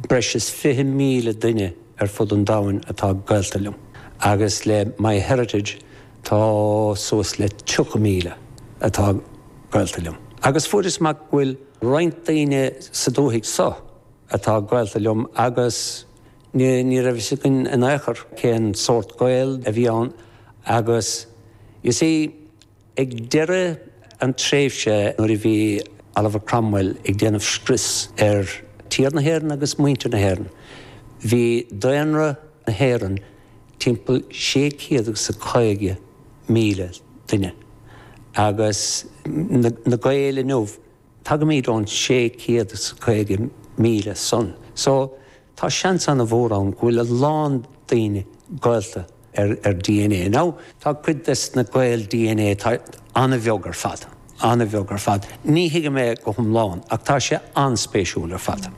Breis is 20,000 duine ar fud an domhain atá gaolta liom agus le MyHeritage tá suas le 30,000 atá gaolta liom. Agus fuaireas amach go bhfuil roinnt daoine sa dúthaigh seo atá gaolta liom agus ní raibh fhios againn in aon chor cén sórt gaol a bhí ann agus you see, Ag deireadh an tréimhse nuair a bhí Oliver Cromwell ag déanamh scrios ar tír na hÉireann agus muintir na hÉireann, bhí daonra na hÉireann timpeall sé chéad agus a caoga míle duine, agus na Gaeil inniu, Tagaimid ón 650,000 san, so tá seans ana mhór ann go bhfuil a lán daoine gaolta ar dna. Now, tá cuid des na gaol dna atá ana bheag ar fad, ana bheag ar fad. Ní thuigim é go hiomlán ach tá sé an-spéisiúil ar fad.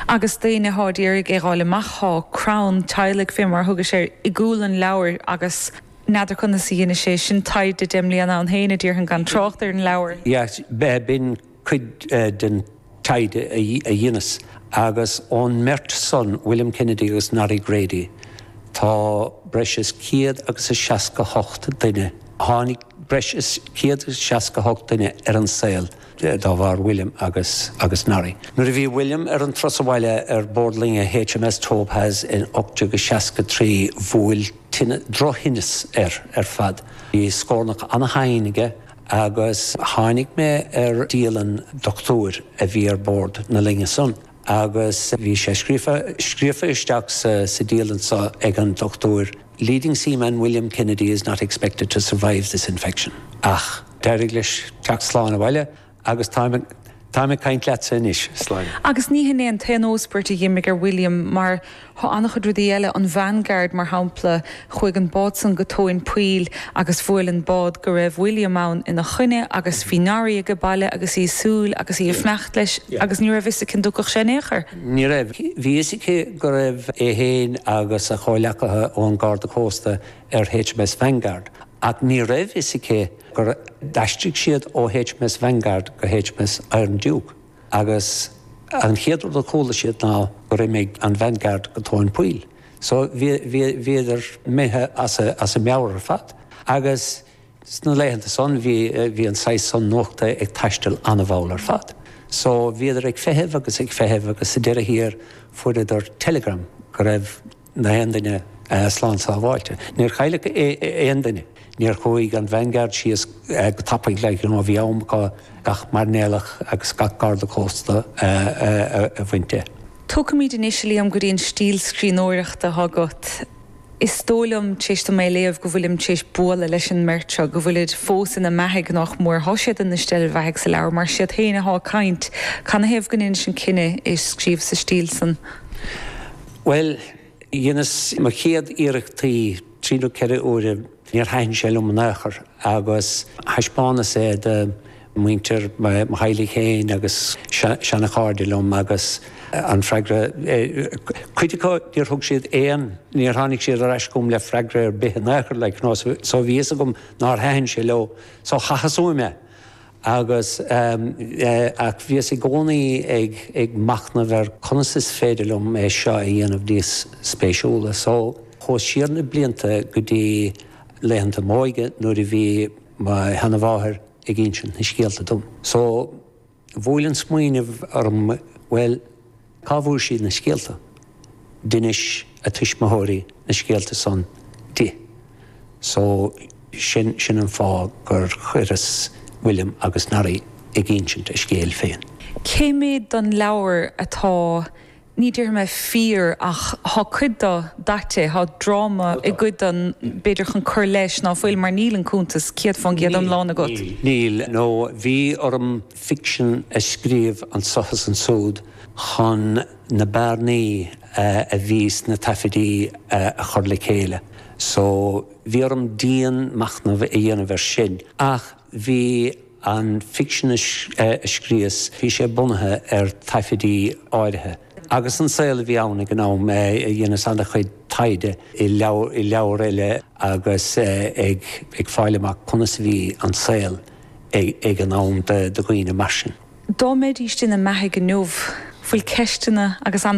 Agus daoine atá ag iarraidh é dh'fháil amach, thá crann teaghlaigh fé mar a thugais air i gcúl an leabhair agus. N'fheadar conas a dheinis é sin taighde deich mbliana ann féin, a déarfainn, gan trácht ar an leabhar. Yes, b'in cuid den taighde a dheineas, agus ón mbeirt san, William Kennedy agus Norrie Grady, tá breis is céad agus a seasca hocht duine, tháinig breis is céad agus seasca hocht duine ar an saol dá bharr William agus Norrie. Nuair a bhí William ar an turas abhaile ar bord loinge HMS Topaze in 1863, bhuail tinn, drochthinneas air ar fad. Bhí scornach ana-thinn aige agus tháinig mé ar dialann doctúir a bhí ar bord na loinge san agus bhí sé scrío, scríofa isteach sa dialann seo ag an doctúir, 'Leading seaman William Kennedy is not expected to survive this infection'. Ach d'éirigh leis teacht slán abhaile Agus táim, táim ag caint leatsa anois. Slán. Agus ní hin é an t-aon óspairt a dh'imigh ar William, mar thá ana-chuid rudaí eile, an Vanguard, mar shampla, chuaigh an bád san go tóin poill agus bhuail an bád go raibh William ann ina choinne agus bhí Norrie aige baile agus í ag súil agus í ag fanacht leis agus ní raibh fhios aici an dtiocfadh sé in aon chor. Ní raibh. Bhí fhios aici go raibh é fhéin agus a chomhleacaithe ón Garda Cósta ar HMS Vanguard ach ní raibh fhios aici, gur d'aistrigh siad ó HMS Vanguard go HMS Iron Duke agus an chéad rud a chuala siad ná gur imigh an Vanguard go tóin poill so bhíodar imithe as a meabhair ar fad agus sna laethanta san bhí, bhí an saghas san nuachta ag taisteal an-mhall ar fad so bhíodar ag feitheamh agus ag feitheamh agus sa deireadh thiar fuaireadar telegram go raibh gach aon duine slán sábháilte. Níor chailleadh aon duine. Níor chuaidh an Vanguard síos go tapaidh le go bhí am acu gach mairnéalach agus gach garda cósta a bhaint de. Tagaimid anois, Liam, go dtí an stíl scríbhneoireachta atá agat. Is dóigh liom, tar éis dom é a léamh, go bhfuilim tar éis bualadh leis an mbeirt seo, go bhfuilid fós ina mbeathaigh, nach mór. Tá siad ina steillbheathaigh sa leabhar, mar is iad féin atá ag caint. Canathaobh go ndeinis an cinneadh é a scríobh sa stíl san? Bhuel, dheineas mo chéad iarractaí trí nó ceithre uaire, níor thaithin sé liom in aon chor agus thaispeánas é do mhuintir mo theaghlaigh féin agus seana chairde liom agus an freagra, cuid acu níor thug siad aon, níor tháinig siad ar ais chugam le freagra ar bith in aon chor like you know so bhí fhios agam nár thaithin sé leo so chaitheas uaim é Agus, ach bhíos i gcónaí ag machnamh ar conas is féidir liom é seo a dhéanamh níos spéisiúla. So, chuas siar na blianta go dtí laethanta m'óige nuair a bhí mo sheanamháthair ag insint na scéalta dom. So, bhuail an smaoineamh orm, bhuel, Cá bhfuair sí na scéalta? D'inis a tuismitheoirí na scéalta san di, so sin, sin an fáth gur chuireas William agus Norrie ag insint a scéil féin. Cé méad don leabhar atá, ní déarfaidh mé fíor, ach thá cuid do daite, thá dráma i gcuid do, b'fhéidir chun cur leis ná fuil, mar níl an cuntas céad fán gcéad iomlán agat. Níl, níl, níl, nó bhí orm ficsean a scríobh anseo is ansúd chun na bearnaí a bhí sna taifidí a chur le chéile so bhí orm dian machnamh a dhéanamh ar sin ach bhí an ficsean a scríos, bhí sé bunaithe ar taifidí áirithe. agus an saol a bhí ann ag an am. Dheineas an-chuid taighde i leabhair eile agus ag fáil amach conas a bhí an saol ag an am do dhaoine mar sin. Dá mbeidís ina mbeathaigh inniu, bhfuil ceisteanna agat.